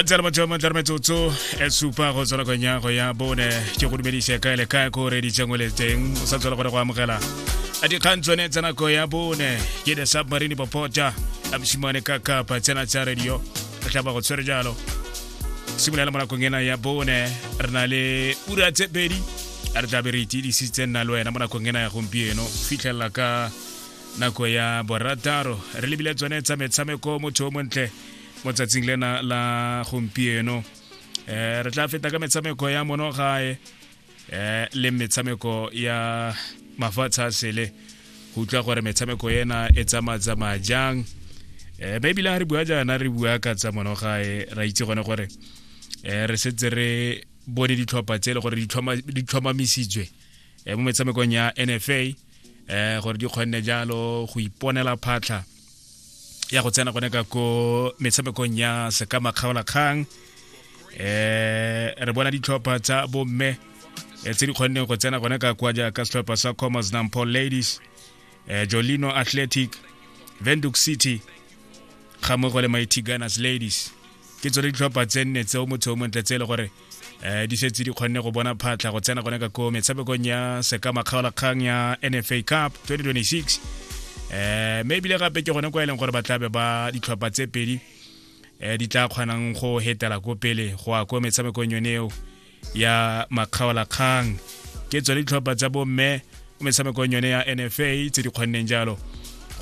gantsi le matšhamo tla re metsotso e supa go tswa nakong ya go ya bone ke go dumedise kae le kae ko re ditsengwe le teng o sa tswela gore go amogela a dikgang tsone tsa nako ya bone ke the submarine popota a mosimane ka kapa tsena tsa radio re tla ba go tshwere jalo simolola mo nakong ena ya bone re na le ura tse pedi a re tlabe re itidisitse nna le wena mo nakong ena ya gompieno fitlhelela ka nako ya borataro re lebile tsone tsa metshameko motho o montle mo tsatsing lena la gompieno um re tla feta ka metshameko ya monogae eh le metshameko ya mafatshe a sele go utlwa gore metshameko ena e tsamaya-tsamaya jang um maybe le ga re bua jaana re bua ka tsa monogae ra itse gone gore um re setse re bone ditlhopha tse e le gore di tlhomamisitswe um mo metshamekong ya n f a um gore di kgonne jalo go iponela phatlha ya go tsena gone ka ko metshamekong ya sekama kgaolakgang eh re bona ditlhopha tsa bomme eh, tse di kgonneng go tsena gone ka kwa jaaka setlhopha sa commerce nampo ladies eh, jolino athletic venduk city ga mo go le mighty gunners ladies ke tsone ditlhopha tse nne tseo motho o montle tse e le gore eh di setse di kgonne go bona phatlha go tsena gone ka ko metshamekong ya sekama kgaolakgang ya nfa cup 2026 eh mme ebile gape ke gone kwa e leng gore ba tlabe ba ditlhopha tse pedi eh di tla kgonang go hetela ko pele go ya ko metshamekong yone eo ya makgaolakgang ke tsone ditlhopha tsa bomme mo metshamekong yone ya nfa tse di kgonneng jalo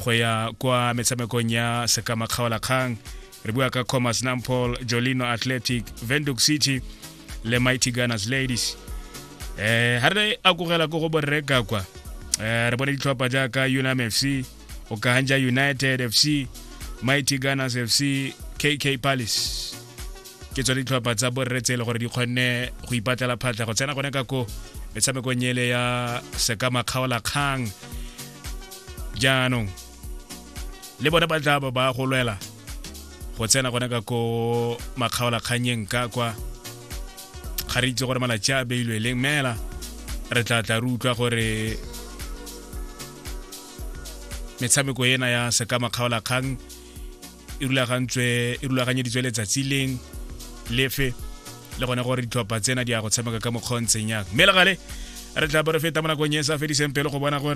go ya kwa metshamekong ya sekama kgaolakgang re bua ka commerce nampol jolino athletic venduc city le mighty gunners ladies eh ha re akogela ko go borreka kwa eh re bone ditlhopha jaaka unam fc okahanja united fc mighty gunners fc kk palace ke tsone ditlhopha tsa borre tse e le gore di kgonne go ipatlela phatlha go tsena gone ka ko metshamekong ele ya sekamakgaola kgang jaanong le bone ba tla ba go lwela go tsena gone ka ko makgaolakganyeng ka kwa ga re itse gore malatsi a beilwe leng mela re tla tla re utlwa gore metshameko ena ya seka makgaolakgang e rulagantswe e rulaganyeditswe letsatsi leng lefe le gone gore ditlhopha tsena di ya go tshameka ka mokgontseng yang mme legale re tla bo re feta mo nakong e sa fediseng pelo go bona gore